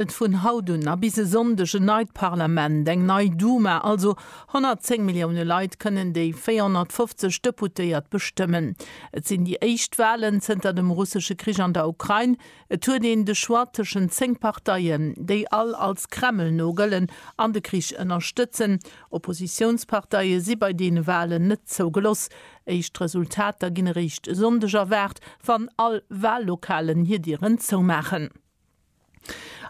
Et vun haut un a bis e Sonndeg en neit Parlament, eng nei Duma, also 110 Millioune Leit kënnen déi 450 Deputéiert bestëmmen. Et sinn déi éischt Walen zënter dem russesche Krich an der Ukrain. Et huet een de Choix tëschent zéng Parteien, déi all als Kreml no gëllen an de Krich ënnerstëtzen. Oppositiounsparteie si bei deene Walen net zougeloss. Éischt Resultater ginn eréischt e Sonndeg erwaart, wann all Wallokalen hir Dieren zoumaachen.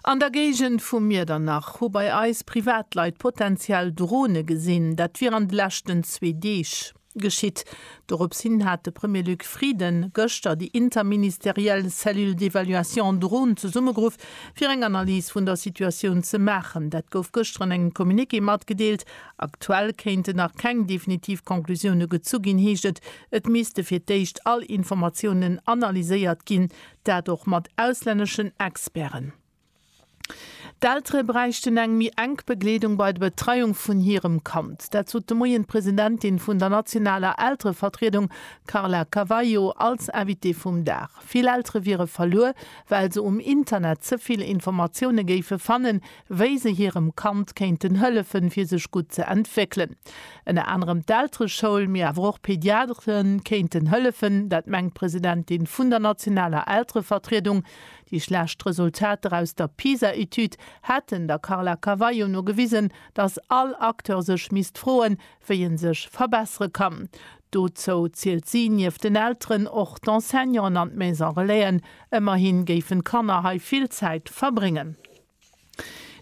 An der Géigend vu Miedernach hu bei eis Privatleit potenziell Drone gesinn. Dat wier an de leschten zwee Deeg geschitt. Dorops hin hat de Premier Luc Frieden gëschter déi interministeriell Cellule d'évaluation drone zesummegeruff, fir eng Analys vun der Situatioun ze maachen. Dat gouf gëschter an engem Communiqué matgedeelt. Aktuell kéinten nach keng definitiv Conclusioune gezu ginn, heescht et. Et misste fir d'éischt all Informatiounen analyséiert ginn. Dat och mat auslänneschen Experten. D'Eltere bräichten eng méi enk Begleedung bei der Betreiung vun hirem Kand. Dat sot de Moien d'Presidentin vun der nationaler Elterevertriedung Carla Cavallo als Invitée vum Dag. Vill Eltere wiere verluer, well se um Internet ze vill Informatioune géife fannen, wéi se hirem Kand kéinten hëllefen, fir sech gutt ze entwéckelen. Ënner anerem d'Eltereschoul, mee awer och Pediatere kéinten hëllefen. Dat mengt d'Presidentin vun der nationaler Elterevertriedung. Déi schlecht Resultater aus der PISA-Etüd hätten der Carla Carvalho no gewisen, datt all Acteur sech misst froen, wéi en sech verbessere kann. Dozou zielt si nieft den Elteren och d'Enseignanten an d'Maison-relaisen. Ëmmerhi géifen d'Kanner hei vill Zäit verbréngen.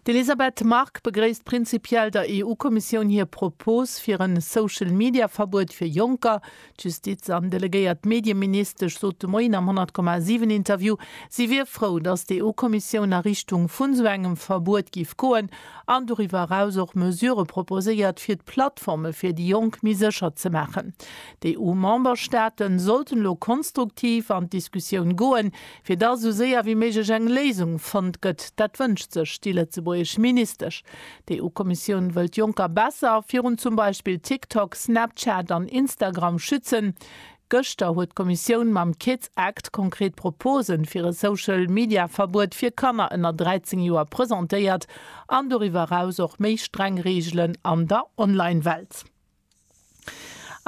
D'Elisabeth Margue begréisst prinzipiell der EU-Kommissioun hir Propos fir e Social-Media-Verbuet fir Jonker. D'Justiz an delegéiert Medieministesch sot de Moien am 100,7-Interview, si wier frou, datt d'EU-Kommissioun a Richtung vun esou engem Verbuet géif goen an doriwwer eraus och Mesure proposéiert, fir d'Plattforme fir déi Jonk méi sécher ze maachen. D'EU-Memberstaate sollten elo konstruktiv an d'Diskussioun goen, Fir datt esou séier wéi méiglech eng Léisung fonnt gëtt, dat wënscht sech déi lëtzebuergesch Ministesch. D'EU-Kommissioun wëll d'Jonker besser virun zum Beispill TikTok, Snapchat an Instagram schützen. Gëschter huet d'Kommissioun mam Kids Act konkret Propose fir e Social-Media-Verbuet fir Kanner ënner 13 Joer presentéiert an doriwwer eraus och méi streng Reegelen an der Online-Welt.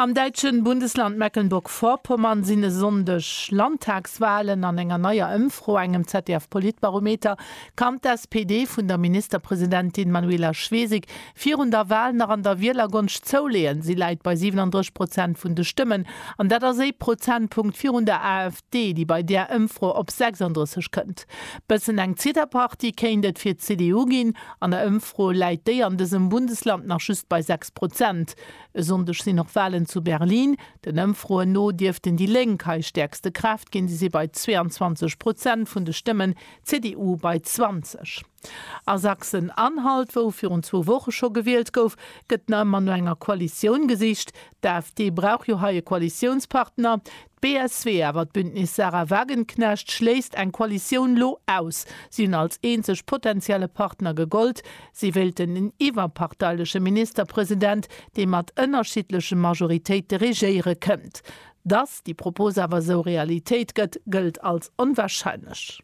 Am däitsche Bundesland Mecklenburg-Vorpommern sinn e Sonndeg Landtagswalen. An enger neier Ëmfro, engem ZDF-Politbarometer, kann d'SPD vun der Ministerpresidentin Manuela Schwesig virun der Wal nach an der Wielergonscht zouleeën. Si läit bei 37 Prozent vun de Stëmmen an dat ass ee Prozentpunkt virun der AfD. Déi, déi bei där Ëmfro op 36 kënnt. Bëssen eng Zitterpartie kéint et fir d'CDU ginn. An der Ëmfro läit déi an dësem Bundesland nach just bei 6 Prozent. E Sonndeg sinn och Walen zu Berlin. Den Ëmfroen no dierften déi Lénk hei stäerkste Kraaft ginn. Si si bei 22 Prozent vun de Stëmmen, d'CDU bei 20. A Sachsen-Anhalt, wou virun zwou Woche scho gewielt gouf, gëtt nach ëmmer no enger Koalitioun gesicht. D'AfD brauch jo hei e Koalitiounspartner. D'BSW, awer d'Bündnis Sarah Wagenknecht schléisst eng Koalitioun lo aus. Si hunn als eenzeg potentielle Partner gegollt. Si wéilten en iwwerparteileche Ministerpresident, dee mat ënnerschiddleche Majoritéite regéiere kënnt. Dass déi Propos awer esou Realitéit gëtt, gëllt als onwarscheinlech.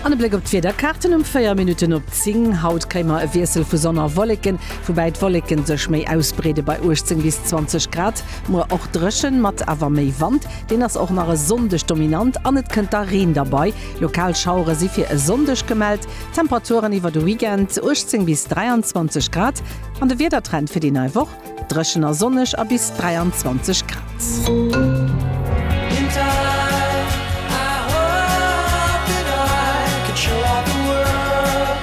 An e Bléck op d'Wiederkaarten um 4 Minutten op 10. Haut kréie mer e Wiessel vu Sonn a Wolleken, woubäi d'Wolleken sech méi ausbreede bei 18 bis 20 Grad. Muer och dréchen, mat awer méi Wand, deen ass och nach e Sonndeg dominant an et kënnt da Reen derbei. Lokal Schauere si fir e Sonndeg gemellt. Temperaturen iwwer de Weekend, 18 bis 23 Grad. An de Wiedertrend fir déi nei Woch. Dréchen a sonneg a bis 23 Grad.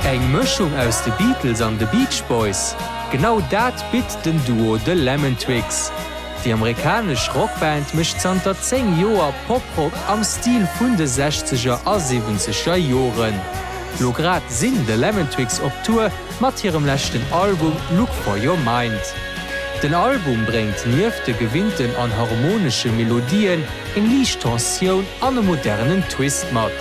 Eng Mëschung aus de Beatles an de Beach Boys? Genau dat bitt den Duo The Lemon Twigs. Déi amerikanesch Rockband mécht zanter 10 Joer Poprock am Stil vun de Sechzeger a Siwwenzeger Joren. Lo grad sinn The Lemon Twigs op Tour mat hirem leschten Album Look For Your Mind. Den Album bréngt nieft de gewinnten an harmonesche Melodien eng liicht Tensioun an e modernen Twist mat.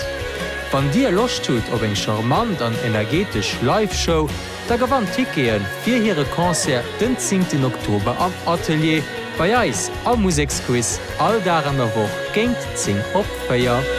Wann dir Loscht hutt op eng charmant an energetesch Live-Show, da gewannt Tickete fir hire Concert den zéngten Oktober am Atelier bei eis am Museksquiz all Dag an der Woch géint 10 op 4.